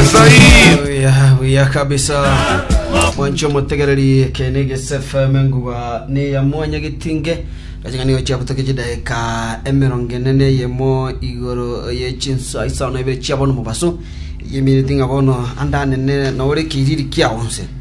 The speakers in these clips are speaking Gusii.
Buya, buya kabisa mwancho motegererie kene gsfm nguba neya mwanya gitinge gaching'ani gochia butoke chidaika emerongo ene na eyemo igoro ye chinsa isano na ibere chiabono mobaso yemineti ng'a bono andanene nore kiriri kiago nse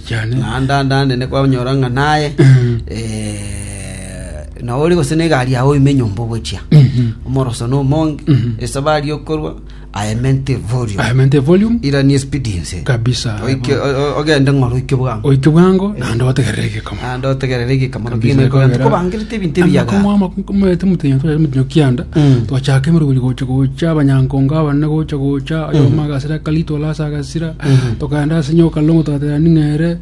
Chane. naende ande anene kwanyora ng'a naye eh, na ore gose na egari yao oime nyomba ogochia omoroso na omonge esabari yokorwa aemente volume Aemente volume irani expediency kabisa. Oike- o- o- ogende ng'oro oike bwango Oike bwango naende otegerere egekamo. ande otegerere egekamano Kabisa, kegima ekogenda ekogera- kobangerete ebinto ebiyaga Amakomo amaku- mwete mutenyo twere mutenyo kianda Mm. twachaka emerugori gocha gocha abanyankongo abanene gocha gocha oyomagasira kalito olasa sira tokaenda ase nyoka longo togatera ning'ere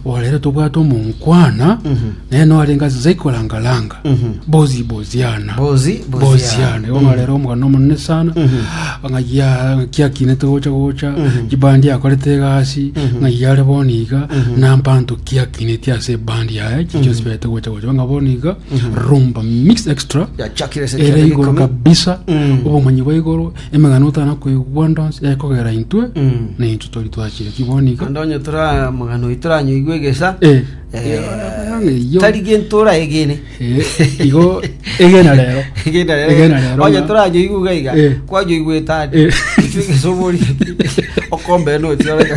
orere tobwate omonkwana naye noarenge ase zai korangaranga bozi boziana Bozi, boziana. boziana igo norere omogano omonene sana ng'ayia kiakinete gocha gocha chibandi yakorete egasi ng'ayia are boni iga nampanto kiakineti ase ebandi yaye chichio sibete gocha gocha ng'a boni iga rumba mix extra Yachakire ase ere igoro Chakirikomi. kabisa obomanyi bwa igoro Emegano otana koigwa ndonsi ekogera intwe, na intwe tori twachiretie bono iga. Naende onye tore amagano aito toranyoigwe egesa Eh, eh, eh, iyo. tari gento oraegene Eh, igo egena rero egena rero Egena rero onye ng'a- toranyoigwe iga iga Eh. kwanyoigwe etani Eh. ekio egesa obori okombere notioreka